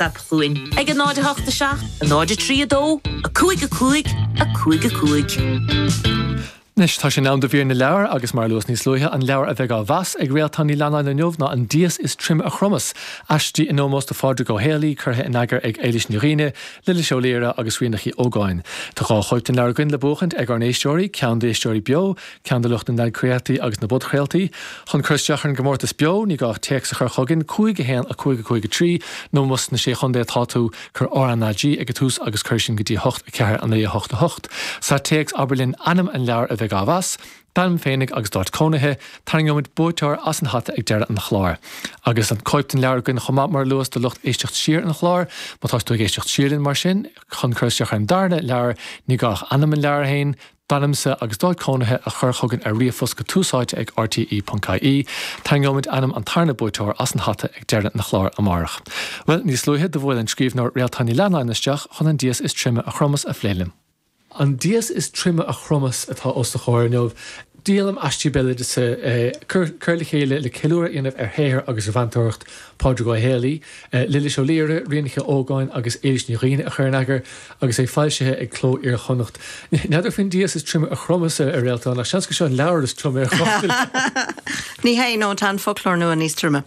Stad Chluain ag 0 8 7 0 3 2 5 5 5 5. Anois tá sé in am do mhír na leabhar agus mar a luas níos luaithe, an leabhar a bheidh á mheas ag Réaltán Ní Leannáin inniu ná An Dias is Troime a Chromas, aistí in ómós do Phádraig Ó Héalaí, curtha in eagar ag Éilís Ní Dhúill, Lillis Ó Laoire agus Ríonach uí Ógáin. Tá dhá chóip den leabhar againn le buachaint ag ár n-éisteoirí, ceann d'éisteoirí beo ceann de lucht na n-athchraoltaí agus na bpodchraoltaí, chun cur isteach ar an gcomórtas beo, ní gá ach téacs a chur chugainn, 5 1 5 5 3 nó más sna Sé Chontae atá tú, cuir RnaG ag an tús agus cuir sin go dtí 8 4 9 8 8 Sa téacs abair linn ainm an leabhair a bheidh á mheas, d'ainm féinig agus d'áit cónaithe, tarraingeoimid buaiteoir as an hata ag deireadh an chláir. Agus tá cóip den leabhar againn chomh maith mar luas do lucht éisteacht siar an chláir, má tá tú ag éisteacht siar linn mar sin, chun cur isteach ar an darna leabhar, ní gá ach ainm an leabhair féin, d'ainmse agus d'áit cónaithe a chur chugainn ar ríomhphost go tusaite ag RTÉ.ie. Tarraingeoimid ainm an tarna buaiteoir as an hata ag deireadh an chláir amárach. Bhuel, níos luaithe do bhuail an scríbhneoir Réaltán Ní Leannáin isteach chun an dias is troime a chromas a phlé linn. An dias is troime a chromas atá os do chomhair inniu, díolaim aistí béaloideasa curtha le chéile le ceiliúradh a dhéanamh ar shaothar agus ar mheantóireacht Phádraig Uí Héalaí, Lillis Ó Laoire, Ríonach uí Ógáin agus Éilís Ní Dhúill a chuir in eagar agus é foilsithe ag Cló Iar-Chonnacht. N'fheadar faoin dias is troime a chromas a Réaltán, ach seans gur seo an leabhar is troime a chrochfar. Ní hea, nó tá an foclóir nua níos troime.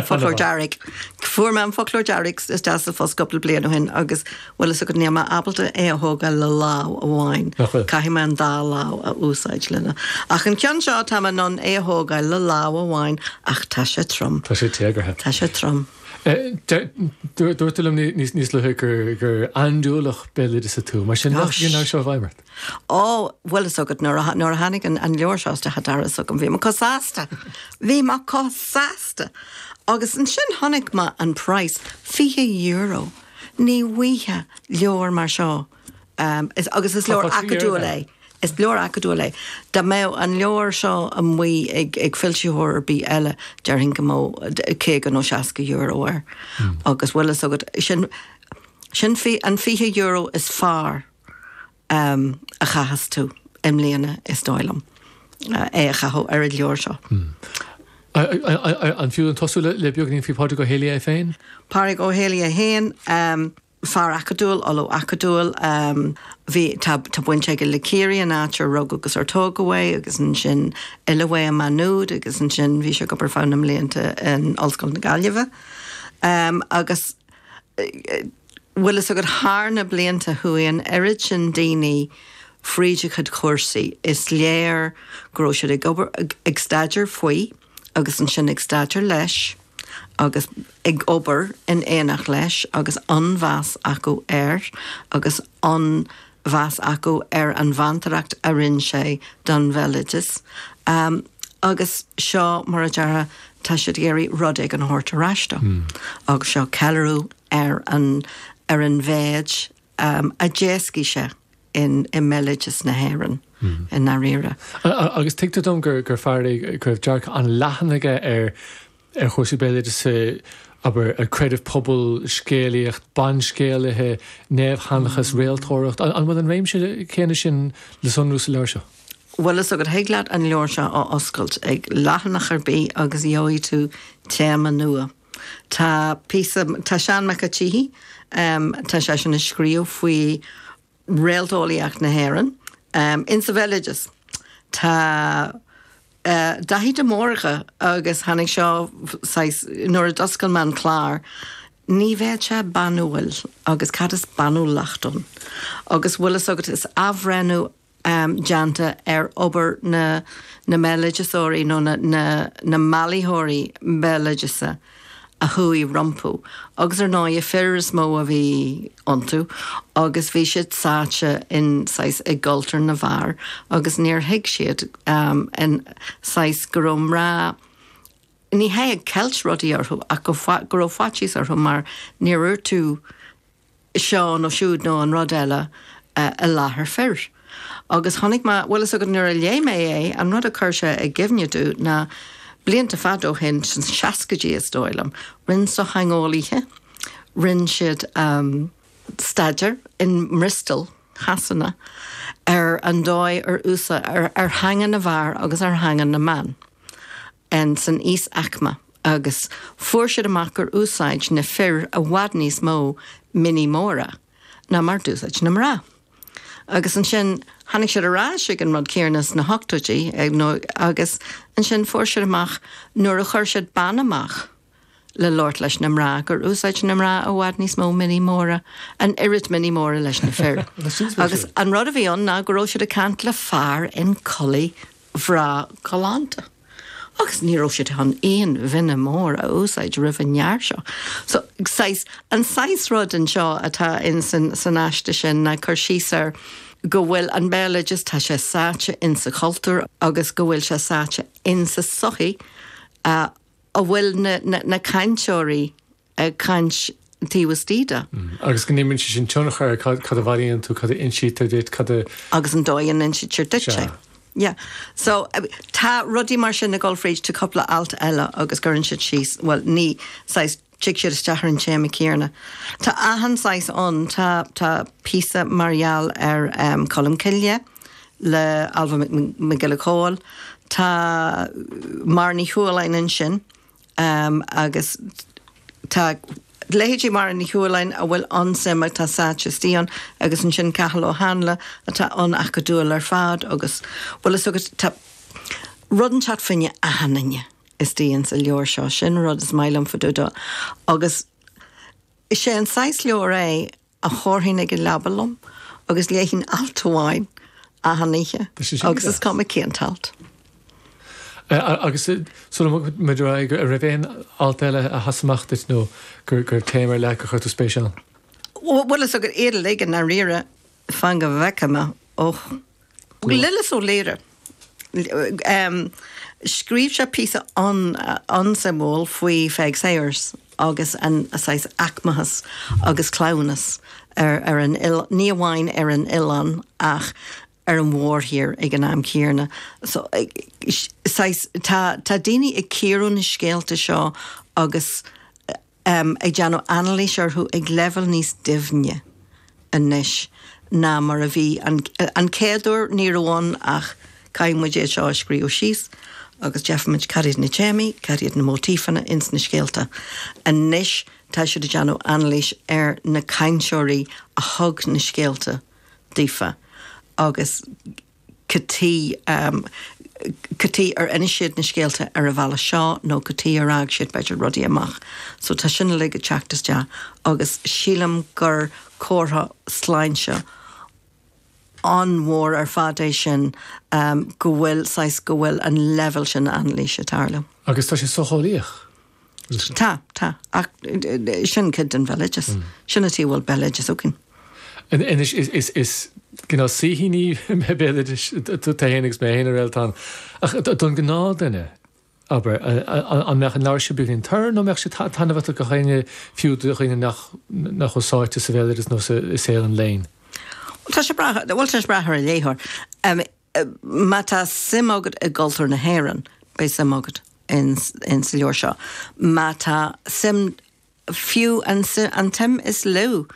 Foclóir dearg. Fuair mé an Foclóir Dearg isteach sa phost cupla bliain ó shin agus Bhfuil fhios agat, níl mé ábalta é a thógáil le lámh amháin. Nach bhfuil? Caithfidh mé an dá lámh a úsáid lena. Ach an ceann seo, táim in ann é a thógáil le lámh amháin ach tá sé trom. Tá sé téagartha. Tá sé trom. Dúirt tú liom níos luaithe gur andúileach béaloideasa tú. Mar sin, ní foláir nó chuaigh seo i bhfeidhm ort? Ó, bhfuil fhios agat, nuair a tháinig an leabhar seo isteach an doras agam, bhí mé chomh sásta! Bhí mé chomh sásta! Agus ansin chonaic mé an praghas, fiche euro. Ar mhaithe le leabhar mar seo, agus is leabhar acadúil é, is leabhar acadúil é, dá mbeadh an leabhar seo amuigh ag foilsitheoir ar bith eile, déarfainn go mbeadh caoga nó seasca euro air, agus bhfuil fhios agat, sin an fiche euro is fearr a chaitheas tú i mbliana, is dóigh liom, é a chaitheamh ar an leabhar seo. An fiú dúinn tosú le beagáinín faoi Pádraig Ó Héalaí é féin? Pádraig Ó hÉiligh féin, fear acadúil, ollamh acadúil, bhí, tá baint aige le Ciarraí, an áit ar rugadh agus ar tógadh é, agus ansin oileadh é i Má Nuad, agus ansin bhí sé ag obair feadh na mblianta in Ollscoil na Gaillimhe. Agus. bhfuil fhios agat, thar na blianta chuaigh an oiread sin daoine fríd a chuid cúrsaí, is léir go raibh siad ag obair, ag staidéar faoi agus ansin ag staidéar leis agus ag obair in éineacht leis agus an-mheas acu air agus an mheas acu ar an mheantóireacht a rinn sé don bhéaloideas agus seo mar a déarfá tá siad ag iarraidh rud éigin a thabhairt ar ais dó agus seo ceiliúradh ar an ar an mhéid a d'éascaigh sé in i mbéaloideas na hÉireann i ndáiríre. Agus tuigtear dom gur gur fear é go raibh dearcadh an-leathan aige ar ar chúrsaí béaloidis, abair, creideamh pobail, scéalaíocht, banscéalaithe, naomhsheanchas, réaltóireacht. An bhfuil an réimse céanna sin le sonrú sa leabhar seo? Bhuel, bhfuil fhios agat thig leat an leabhar seo a oscailt ag leathanach ar bith agus gheobhaidh tú téama nua. Tá píosa, tá Seán Mac a' tSíthigh, tá seisean ag scríobh faoi réalteolaíocht na hÉireann. In sa bhéaloideas tá Daithí de Mórdha agus tháinig seo saghas nuair a d'oscail mé an clár, Ní bheadh sé banúil agus cad is banúlacht ann? Agus bhfuil fhios agat is athbhreithniú déanta ar obair na mbéaloideasóirí nó na mbailitheoirí béaloideasa, a chuaigh rompu, agus ar ndóighe fir is mó a bhí iontu, agus bhí siad sáite in, saghas, i gcultúr na bhfear agus níor thuig siad, in, saghas, go rabh mná, ní hé ag ceilt rudaí orthu ach go rabh faitíos orthu mar ní dhéarfadh tú, seo nó siúd nó an rud eile i láthair fir. Agus chonaic mé, bhfuil fhios agat, nuair a léigh mé é, an rud a chuir sé i gcuimhne domh ná blianta fada ó shin, sna seascaidí is dóigh liom, rinn sochtheangeolaithe, rinn siad staidéar i mBriostó Shasana ar an dóigh ar úsáid, ar theanga na bhfear agus ar theanga na mban. insan íosaicme agus fuair siad amach gur úsáid na fir i bhfad níos mó mionnaí móra ná mar d'úsáid na mná. Agus ansin tháinig siad ar ais ag an rud céanna sna hochtóidí, nó agus ansin fuair siad amach nuair a chuir siad bean amach, le labhairt leis na mná, gur úsáid na mná i bhfad níos mó mionnaí móra, an oiread mionnaí móra leis na fir. Agus an rud a bhí ann ná go raibh siad ag caint le fear i gculaith bhreá galánta. Agus ní raibh siad chun aon mhionna mór a úsáid roimh an bhfear seo. So, saghas, an saghas rud anseo atá in san, san aiste sin ná cur síos ar go bhfuil an béaloideas, tá sé sáite insa chultúr agus go bhfuil sé sáite insa sochaí a bhfuil na cainteoirí ag caint taobh istigh de. Agus go n-imríonn sé sin tionchar ar caidé a bhailíonn tú, caidé a insítear duit, caidé a, agus an dóigh a n-insítear duit é. Yeah. So, tá rudaí mar sin ag gabháil fríd, tá cúpla alt eile agus cuireann siad síos, bhuel, ní saghas Tig siad isteach ar an téama céarna. Tá achan saghas ann. Tá píosa mar gheall ar Cholm Cille le Ailbhe Nic Giolla Chomhaill. Tá Máire Ní Chualáin ansin agus tá leithéidí Máire Ní Chualáin a bhfuil an-suim aici, tá sáite istigh ann agus ansin Cathal Ó Háinle atá an-acadúil ar fad agus bhfuil fhios agat tá rud ann, seacht, faoi choinne achan nduine. Istigh ann sa leabhar seo, sin an rud is maith liom fá dtaobh dó, agus is é an saghas leabhair é a thabharfainn chuig an leaba liom agus léifinn alt amháin achan oíche agus is cuma cén t-alt. Agus sula mbogfaidh muid ar aghaidh, an raibh aon alt eile a sheas amach duit nó go raibh téama ar leith gur chuir tú spéis ann? Bhuel, is iad uilig iad, dáiríre, Fan go bhfeice mé. Och. Lillis Ó Laoire. Scríobh sé píosa an-suimiúil faoi Pheig Sayers agus an saghas aicmeachais agus cleamhnais ar an, ní amháin ar an oileán ach ar an mhórthír ag an am céanna. So, saghas, tá daoine ag cíoradh na scéalta seo agus. ag déanamh anailís orthu ag leibhéal níos doimhne anois ná mar a bhí. An chéad uair, ní raibh ann ach, Caithfidh muid é seo a scríobh síos agus déarfaidh muid cad iad na téamaí, cad iad na móitífeanna ins na scéalta. Anois tá siad ag déanamh anailís ar na cainteoirí a thug na scéalta daofa agus. Cad chuige, cad chuige ar inis siad na scéalta ar an bhealach seo nó cad chuige ar fhág siad b'fhéidir rudaí amach. So tá sin uilig ag teacht isteach agus sílim gur comhartha sláinte an-mhór ar fad é sin go bhfuil saghas go bhfuil an leibhéal sin anailíse ag tarlú. Agus tá sé socheolaíoch. Tá, tá, ach sin cuid den bhéaloideas. Sin an tuige a bhfuil béaloideas againn. Anois, is geall le saoithíní béaloidis, tú féin agus mé féin a Réaltán, ach don ghnáth duine, abair, an mbeadh an leabhar seo beagáinín tur nó mbeadh sé taitneamhach do dhaoine, fiú do dhaoine nach bhfuil sáite sa bhéaloideas nó i saol an léinn? Tá sé breá, bhuel, tá sé breá thar an léitheoir. Má tá suim agat i gcultúr na hÉireann, beidh suim agat in sa leabhar seo. Má tá suim, fiú an tsuim is lú,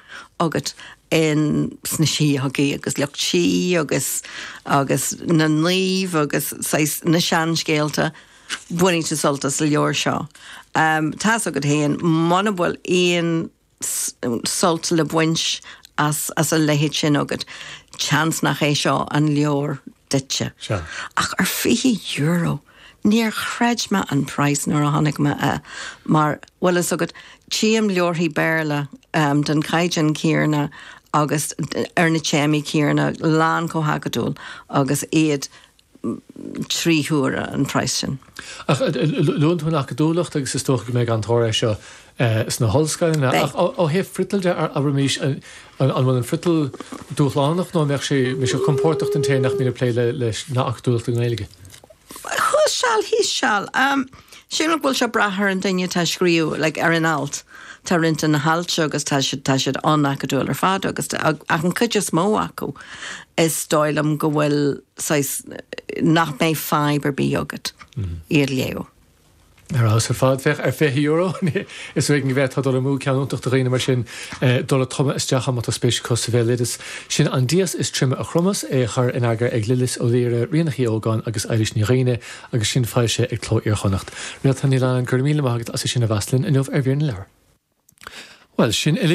agat in sna síógaí agus lucht sí agus agus na naoimh agus saghas na seanscéalta, bainfidh tú sult as an leabhar seo. Tá's agat féin, muna bhfuil aon. sult le baint as a leithéid sin agat, seans nach é seo an leabhar duitse. Ach ar €20? Níor chreid mé an praghas nuair a chonaic mé é, mar, bhfuil fhios agat, tchím leabharthaí Béarla den chaighdeán chéanna agus ar na téamaí céanna lán chomh hacadúil agus iad. trí huaire an praghas sin. Ach luann tú an acadúlacht agus is dócha go mbeidh an-tóir air seo sna hollscoileanna. Beidh. Ach ó thaobh friotail de, abraimís, an bhfuil an friotal dúshlánach nó an mbeadh sé, mbeidh sé compordach don té nach mbíonn ag plé leis an acadúlacht i nGaeilge? Thuas seal thíos seal. Sílim go bhfuil sé ag brath ar an duine atá ag scríobh, like ar an alt. Tá roinnt de na hailt seo agus tá siad, tá siad an-acadúil ar fad agus, ach an chuid is mó acu is dóigh liom go bhfuil, saghas nach mbeidh fadhb ar bith agat iad a léamh. Ar fheabhas ar fad. Féach ar €20. Is ar éigin go bhféadfá dul amú. Ceann iontach do dhaoine mar sin dul ag tumadh isteach ann má tá spéis acu sa bhéaloideas. Sin An dias is troime a chromas, é a chur in eagar ag Lillis Ó Laoire, Ríonach uí Ógáin agus Éilís Ní Dhuibhne agus sin foilsithe ag Cló Iar-Chonnacht. Réaltán Ní Leannáin, go raibh míle maith agat as é sin a mheas linn inniu ar Mhír na Leabhar. Bhuel, sin uilig.